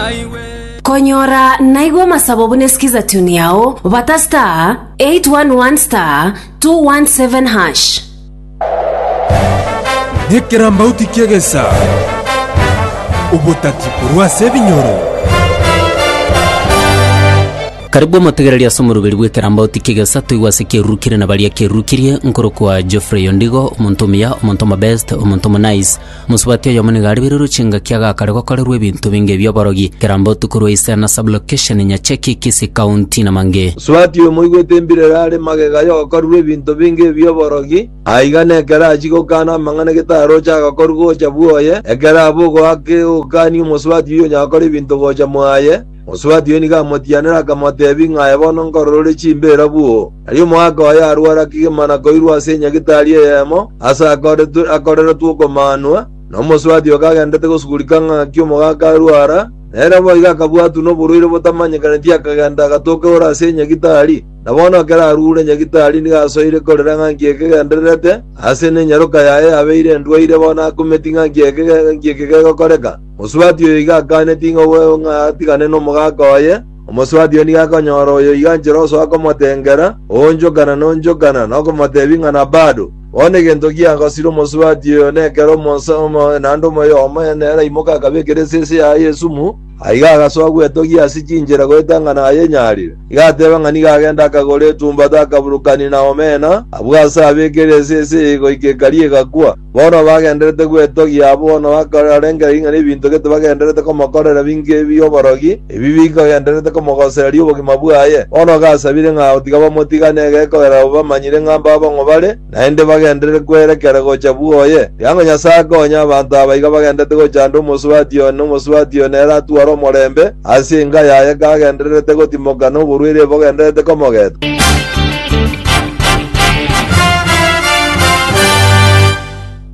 aigwe. Konyora naigwe amasabo buna esikiza tune yao bata star 811 star 217 hash. Nekerambauti ki'egesa, obotati korwa ase ebinyoro. Karibu omotegereri ase omoruberi bw'ekerambauti ki'egesa toigwe ase ki'erurukire na baria ki'erurukirie nkorokwa Geoffrey Ondigo, omonto omuya, omonto omobest, omonto omonice, Mosubati oyomo nigo aribereirwe chingaki agakare gokorerwa ebinto binge ebi'oborogi, kera mbotuko rwa ise na sublocation Nyacheki, Kisii County, na mangĩ. Mosubati oyomo oigwete embirero are magega y'ogokorerwa ebinto binge ebi'oborogi, aiga nekero achia gokana amang'ana getaroche agakorwa gocha bw'oye, ekero aba ogoaka egokania omosubati oyio onyakore ebinto gocha mwaye, Omosuati oyo nigo amotianera, akamoteebia ng'a aye bono nkororore chimbeera bwoo. Erio omogaaka oye arware akegima na koirwa ase enyagitari eyemo, aase akoreretwe okomaanwa, na omosuati oyo kagenderete gosugurika ng'a ng'aki omogaaka arwara, nere boigo akabwatwa noborwaire botamanyekaneti akagenda agatoka igoro ase enyagitari, na bono ekero aruure enyagitari nigo asoire korera ng'a nki ekegendererete, aase nenyaroka yaye yabeire endwaire bono akumeti ng'a nki eke gegokoreka. Mosubati oyo iga akaaneti ng'a ng'a atigane nomogaaka oye, omosubati oyo nigo akonyora oyo iga nchera osoa komotengera, oonchokana noonchokana, na okomoteebia ng'a nabado. Bono egento giagosire omosubati oyo nekero omonsa omo, naende oyomo nere aimoka akabekera esese yaye esumu, aiga agasoa gwetogia ase chinchera goeta ng'a nayenyarire. Iga ateeba ng'a nigo agende akagore etumbato akaburukania na omena, abwo aase abekere esese eye goika ekaria egakwa. Bono abagenderete gwetogia abwo bono bakararengera ring'ana ebinto gete bagendererete komokorera binge ebi'oborogi, ebi bikagendererete komogosereria obogima bwaye. Bono gasabire ng'a gotiga bamotigane egekogera abo bamanyire ng'a mbabong'u bare, naende bagenderere kwerekera gocha bwoye. Tiga ng'a Nyasae akonye abanto aba iga bagendererete gochanda omosubati one, omosubati one ere atware omorembe, Ase enka yaye kagendererete gotimoka, na oborwaire bogendererete komogeta.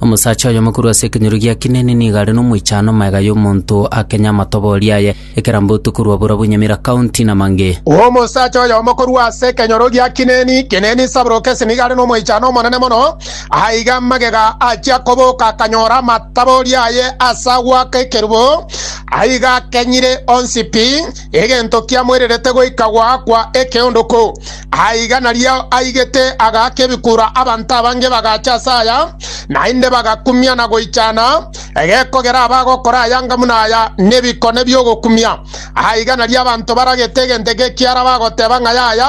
Omosacha oyomo korwa ase ekenyoro gia Kinene nigo are nomoichano magega y'omonto akenya amatoboori aye, ekeramboto korwa bora bwa Nyamira County, na mang'e. Omosacha oyomo korwa ase ekenyoro gia Kinene, Kinene Sub-location, nigo are nomoichano omonene mono. Aiga magega achia koboka akanyora amataboori aye ase agoaka ekerubo. Aiga akenyire onsi pi, egento kiamoirerete goika goakwa ekeondoku. Aiga nario aigete agaaka ebikura abanto abange bagacha ase aya, naende bagakumia na goichana, egekogera abagokora ayanga buna aya nebikone bi'ogokumia. Aiga nario abanto baragete egento gekiara bagoteba ng'a yaya,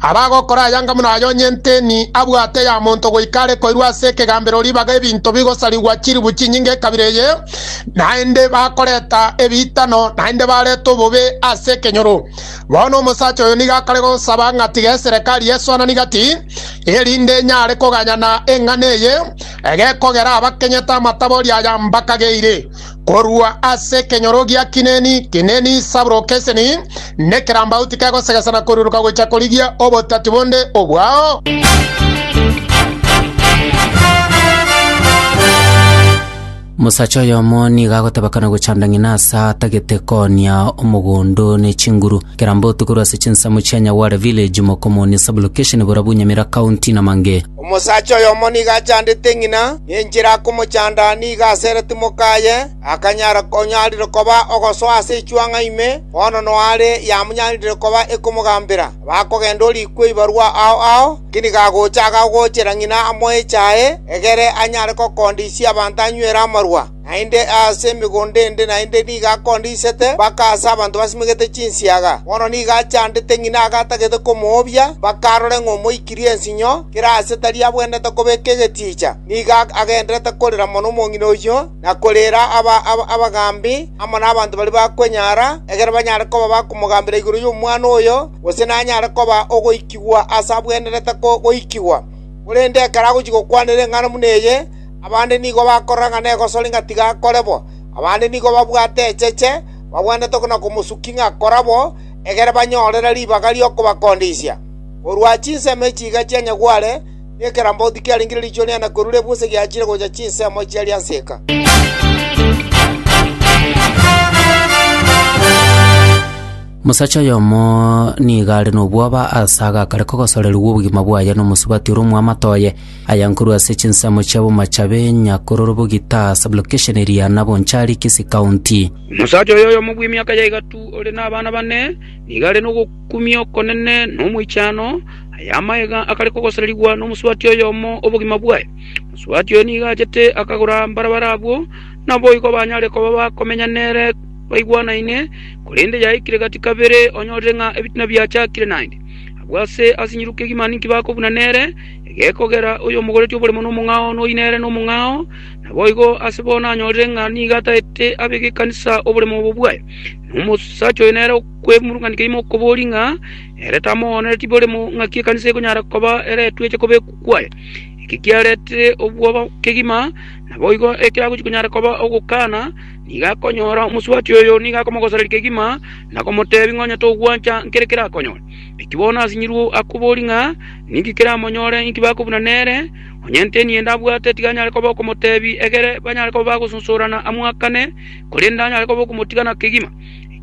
Aragokora ayanga buna aye onye enteni abwate ya monto goika are koirwa ase ekegambero ribaga ebinto bigosarigwa chilifu chinyinge ekabira eye, naende bakoreta ebiitano, naende barete obobe ase ekenyoro. Bono omosacha oyo nigo akare gosaba ng'a tiga eserekari esoana nigati, erinde enyare koganyana eng'ana eye, egekogera abakenyete amatabori aya mbakageire. Korwa ase ekenyoro gia Kineni, Kineni, Sabro, Keseni, nekerambauti kegosegesa na koruruka gocha korigia obotati bonde obwao. Mosacha oyomo nigo agotebakana gochanda ng'ina ase atagete koonia omogondo ne chinguru. Kerambauti korwa ase chinsamu chia Nyagware Village, Mokomoni Sub-location, Burabunyamira County, Namange. Omosacha oyomo nigo achandete ng'ina, na enchera akomochanda nigo asereti mokaye, akanyara onyarire koba ogosoa ase echuang'a ime, bono noare yamonyarire koba ekomogambera. Bakogenda orikwe ebarua ao ao, lakini gagocha agagochera ng'ina amoe echae, egere anyare gokonda isi abanto anywere amarwa. naende aase emegondo ende naende nigo akondisete mpaka aase abanto basimegete chinsiaga. Bono nigo achandete ng'ina age atagete komoobia, mpaka arore ng'a omoikirie ensinyo, kera aase tari abwenerete kobeka egetiicha. Nigo agendererete korera mono omong'ina oyio, na koreera abagaambi, amo nabanto baria bakwenyara, ekero banyare koba bakomogambera igoro y'omwana oyo, gose nanyare koba ogoikigwa aase abwenerete goikigwa. Korende ekero agochia gokwanera eng'ana buna eye, Abande nigo bakorora ng'a negosori ng'a tiga akore bo, abande nigo babwate echeche, babwenerete na komosukia ng'a kora bo, egere banyorere ribaga ri'okobakondisia. Korwa chinsemo echi iga chia nyagware, nekerambauti kiarengire riichoro riane korwa rebuse giachire gocha chinsemo chia riaseka. Mosacha oyomo nigo are nobwoba ase agakare k'ogosorerigwa obogima bwaye nomosubati ore omwamate oye. Aya nkorwa ase chinsemo chia bomachabe, nyakororo bogita, sublocation eria, na bonchari, Kisii County. Omosacha oyo oyomo bw'emiaka ya igatu ore nabana bane nigo are nogokumia okonene na omoichano, aye amaiga akare kogosererigwa nomosubati oyomo obogima bwaye. Omosubati oyo nigo achete akagora mbarabara abwo naboigo banyare koba bakomenya nere baigwanaine, korende yaikire gati kabere onyorire ng'a ebitina biachakire naende. Abwo ase asinyiru kegima ninki bakobuna nere? Egekogera oyomogoreti oborimo nomong'ao noine ere nomong'ao, naboigo ase bono anyorire ng'a nigo ataete abe gekanisa oborimo obo bwaye. Na omosacha oyo nere okwemurung'ania keima okoboria ng'a ere tamoonereti borimo ng'aki ekanisa ekonyara koba ere etweche kobekwa kwaye. Eki kiaretire obwoba kegima, naboigo ekero agochia konyara koba ogokana, nigo akonyora omosubati oyo nigo akomogosereria kegima na komotebia ng'a onyete ogwancha nkere kerakonyore. Inki bono asinyirwe akoboria ng'a ninki keramonyore, inki bakobuna nere? Onye nteni ende abwate tiga anyare koba okomotebi, egere banyare koba bagosunsurana amoakane, korende anyare koba okomotiga na kegima.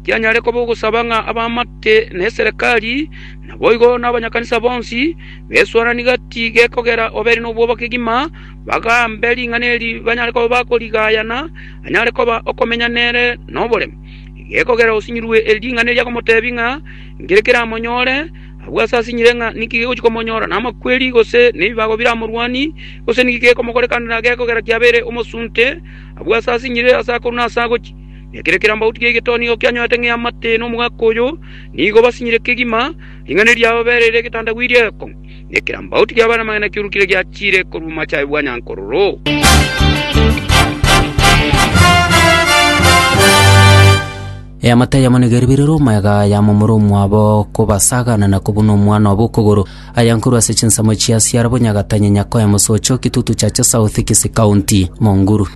Ekiagera anyare koba ogosaba ng'a abaamate neserekari, naboigo nabanyakanisa bonsi, besueranie gati gekogera oberi nobwoba kegima, bagaambe ring'ana eri banyare koba bakorigayana, anyare koba okomenya nere noboremu. Gekogera osinyirwe eri ring'ana eri akomotebi ng'a, Nkere keramonyore, agwo aase asinyire ng'a niki gegochia komonyora, namakweri, gose nebibago biramorwanie, gose niki gekomogorekanera gekogera kiabeire omosunte, agwo aase asinyire aase akoru na aase agochia. Na ekero ekerabaoti kia egetoni igo kianyorete ng'a eamate nomogaka oyo, nigo basinyire kegima, ring'ana riabo bereire egetanda gw'irieko, na ekerambaoti ki'abana magena kiurukire giachiire korwa omoachabi bwa nyankororo. Eamate yamonega eribirire omoegaa yamomura omwabo kobasaagana na kobuna omwana obo okogoro. Aya nkorwa ase chinsemo chia Siara bonyagatanya Nyakoya mosoche o Kitutu cha Chesauthi Kisi County, Monguru.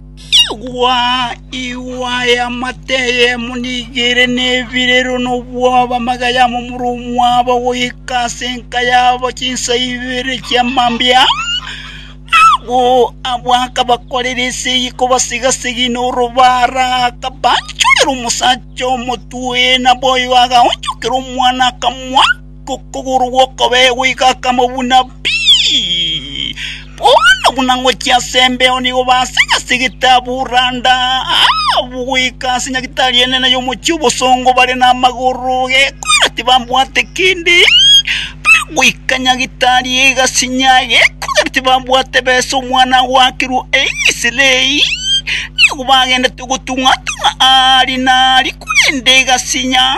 Igwa, igwa, eamate yamonega ere nebirero nobwoba amagega yamomura omwabo goika ase enka yabo chinsa ibere chi'amambia. Nabo abwo akabakorera esegi kobasega-segi norobara, akabaanchorera omosacha omotwe, na boyo agaonchokera omwana akamoaka okogoro gw'okobegwa, igo akamobuna pi. Bono buna ngochia ase embeo nigo basega-segete abwo randa, abwo goika ase nyagitari enene y'omochie obosongo bare namagoro gekora tibambwate kende. goika nyagitari egasinya gekogera tibabwate besa omwana agoakirwe eiisilei nigo bagendete gotung'a tung'a aari naari korende egasinya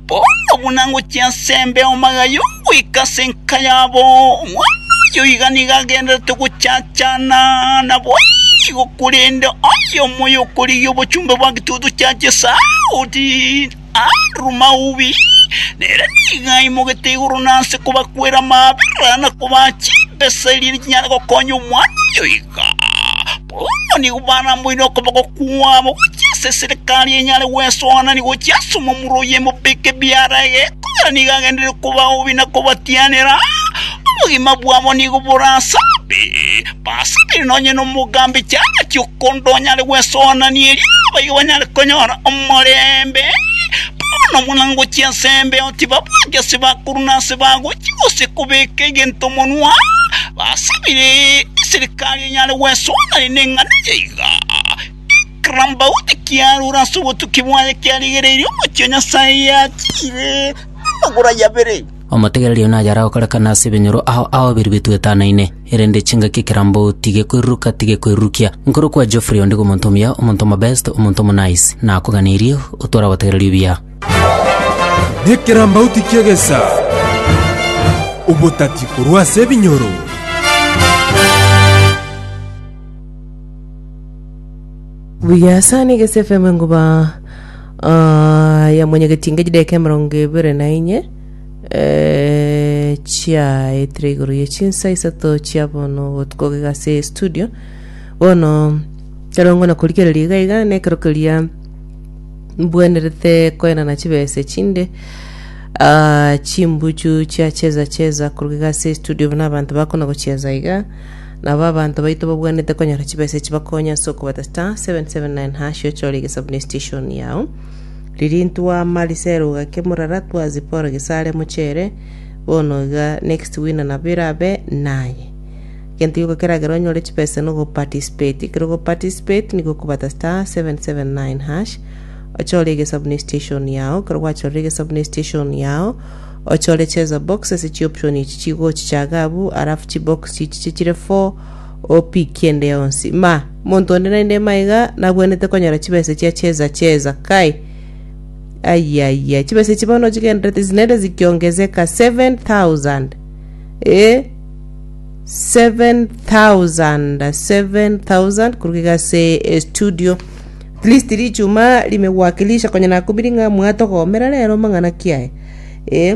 bono buna ngochia ase embe omagayo goika ase enka yabo omwana oyio iga nigo agendererete gochachana naboigo korende oyomo yokorigia obochumbe bwa gitutu kia chisaudi Andrew Maubi, nere nigo aimogete igoro na nse kobakwera amabera na kobaa chimbesa erio chinyare gokonya omwana oyo oika. Bono nigo baramboire okoboko kwabo gochia ase eserekari enyare gwesoanani gochia ase omomura o Yemobeke biara egekogera nigo agenderire kobaobi na kobatianera, obogima bwabo nigo borasabe, basabire nonye nomogambi chang'aki Korende onyare gwesoanania erio abaige banyare konyora omorembe, bono buna ngochia ase embeo tibabwati gose bakuru nase bagochia gose kobeka egento monwa, basibire, eserikari enyare gwesoanania neng'ana eye iga. Ekrambaute kiarure ase obotuki bwaye kiarigereirie omochie o Nyasae yachiire amagoro ayabere. Omotegereria oyo nayare agokorekana ase ebinyoro ao ao biria bitwetanaine. Erinde chingaki ekerambo tigekoiruruka, tigekoirurukia. Nkorokwa Geoffrey onde omonto omuya, omonto omobest, omonto omonice. Nakoganeiri, otware agotegereri obuya. Nekerambauti ki'egesaa, obotati korwa ase ebinyoro. Buya sana egese FM ngoba ah, ya mwenye getinga chideka emerongo ebere na inye Eh, chiaetire igoro ye chinsa isato chia bono obotuko gaiga ase studio bono kerongo na korigereria iga iga nekero keria mbwenerete koenana chibesa echinde ah, chimbuchu chia cheza cheza koruga iga ase studio buna abanto bakona gocheza iga nabo abanto baito babwenerete konyora chibesa echi bakonya ase okobata star 779 hash ochore egesabu ne station yao Ririntwa Marisel ogake moraratu ase Paul Gisare mochere, bono iga next winner nabo erabe naye. Egento gionka keragere onyore chibesa na ogoparticipate, ekero ogoparticipate nigo okobata *779#, ochore egesabu ne station yao, ekero gwachorire egesabu ne station yao, ochore cheza box ase chioption echi chigochichaga abwo, alafu chibox echi chichire 4, opikie ende yonsi. Ma, monto onde naende maiga nagwenerete konyora chibesa echia cheza cheza. Kai! Aiyaia, chibesa echi bono chigenderete ase naende zikiongezeka 7,000. Ee, 7,000, 7,000 koruga iga ase estudio. At least richuma rimewakilisha konya nakumiri ng'a mwatogoomera rero mang'ana ki aya? Ee.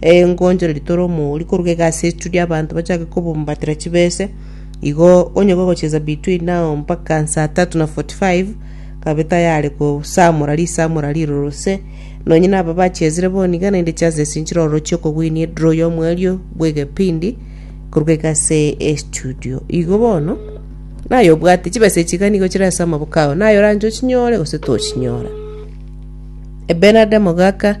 Engoncho riria tore omouria koruga egasi eturi abanto bachake kobumbatera chibese igo onye gogocheza between now mpaka saa tatu na 45 kabe tayari gosamora risamora riroro gose nonye na aba bachezire boni iga naende chances chinchire ororo chiokogwinia edraw ya omwerio bwa egepindi koruga iga ase estudio igo bono naye obwate chibesa echi iga nigo chire ase amaboko ao naye oranche ochinyore gose tochinyora Ebenard Mogaka.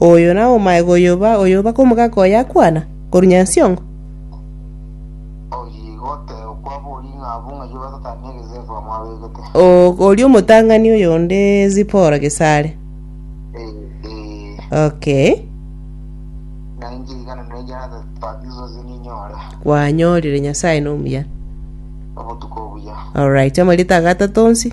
Oyo naomae goyoba oyoba kw'omogaka oye akwana, korwa nyansongo. O- oria omotang'ani oyonde Zipora Gesare. Okay. Kwanyorire Nyasaye nomuya. Alright, amarita agatato onsi.